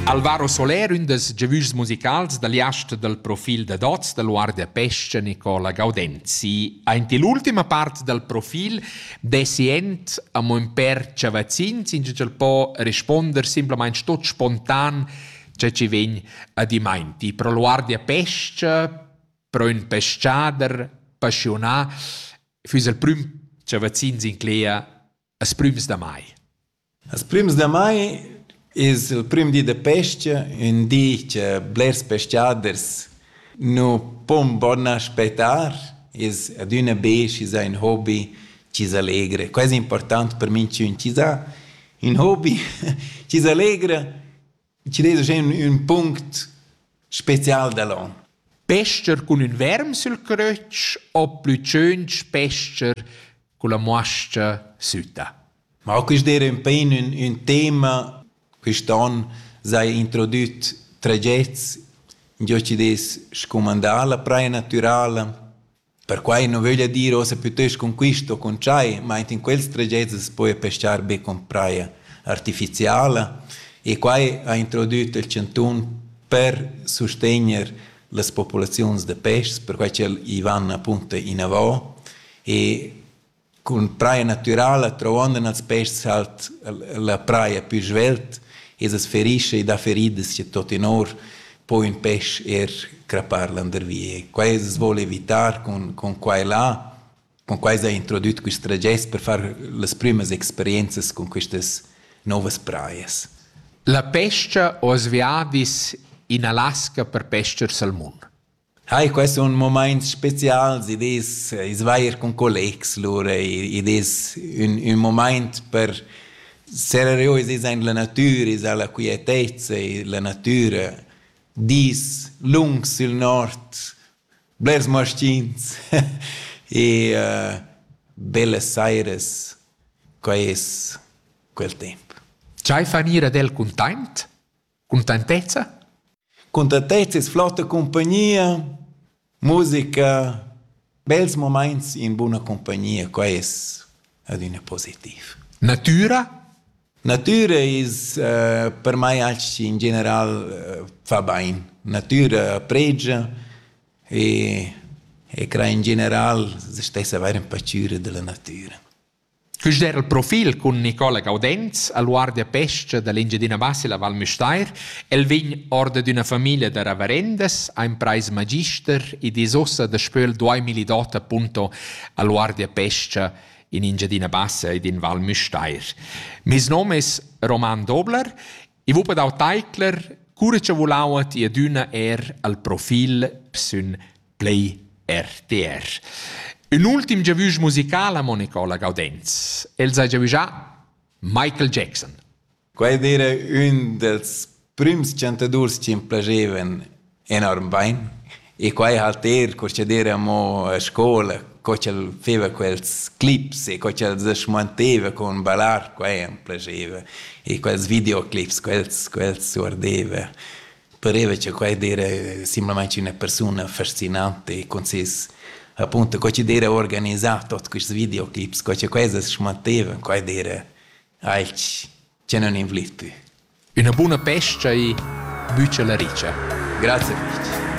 Alvaro Soler, ün dels giavüschs musicals da liast dal profil da dots da Guardia Pesce Nicola Gaudenzi. Aint l'ultima part dal profil dessi ent amo ün per chavazzins, in ch'el po responder simplamaing tot spontan che ci vegn a dimainti. Pro Guardia Pesce, pro ün peschader passionà, füss il prüm chavazzins in Clea Las prümas da mai. Las prümas da mai es il prüm di da pes-cha, ün di cha blers pescaders nu pon bon aspettar, es adüna be schi s'ha ün hobi chi s'allegra. Quai es important per minchün chi s'ha ün hobi chi s'allegra Ci des ün, ün punct special da l'on? Pester cun ün verm sül crötsch o plü tschögn pester cun la muascha süta? Ma quist d'eira ün pain ün, ün tema. Quist on s'haja introdüt tragets, giò chi des scumandà la praja natürala. Perquai nu vöglia dir uossa pütöst cun quist o cun tschai, ma aint in quels tragets as poja pescar be cun praja artificiala e quai ha introdüt il chantun per sustegner las populaziuns da peschs, perquai ch'el i van apunta inavò e Cun praia natürala truondan als peschs halt la praia pü svelt e as ferischa e dà feridas cha tuottenor po ün pesch eir crappar landervi. E quai as voul evitar cun cun qua e là. Cun quai s'ha introdüt quist tragest per far las prümas experienzas cun quistas nouvas praias. La pes-cha ho as viadis in Alaska per pes-cher sal mun. Ai, quai sun mumaints spezials, id es ais vair cun collegs lura, id es ün ün mumaint per serrer io i aint la natüra, esa la quietezza, la natüra, dis lungs sül nord, blers maschins e bellas sairas, quai es quel temp. Dschai fan ir ad el cuntaint? Cuntentezza? Cuntentezza es flotta cumpagnia, musica, bels mumaints in buna cumpagnia, quai es adüna positiv. Natüra? Natüra es uh, per mai anche in general uh, fa bain. Natüra pregia e, e cra in general se stessa avair in pacüra da la natüra. Quist era il profil cun Nicola Gaudenz al guardia pes-cha da l'Engiadina Bassa la Val Müstair. El vegn or dad üna famiglia da ravarendas, ha imprais magister ed es uossa daspö il 2008 appunto al guardia pes-cha in Engiadina Bassa ed in Val Müstair. Meis nom es Roman Dobler I vul per dau teicler, cura cha vulau ti adüna er al profil sün Play RTR. Un ultim giavüsch musicala, Monicola Gaudenz. El sa giavüschà Michael Jackson. Quai dire ün dels prüms chantadurs chi m'plagevan enorm bein. E quei halt er curschader amo a scola, co ch'el feva quels clips e co ch'el se schmanteva con ballar, quei am piaceva. E quels videoclips, quels, quels guardeva. Pareva che quei d'era simplamaing üna persuna fascinante e con ses appunto co ch'd era organisà tuot quists videoclips, co che quai se schmanteva, quai d'era alch Tgei non invliti? Üna buna pescha e bütscha la richa. Grazie fich.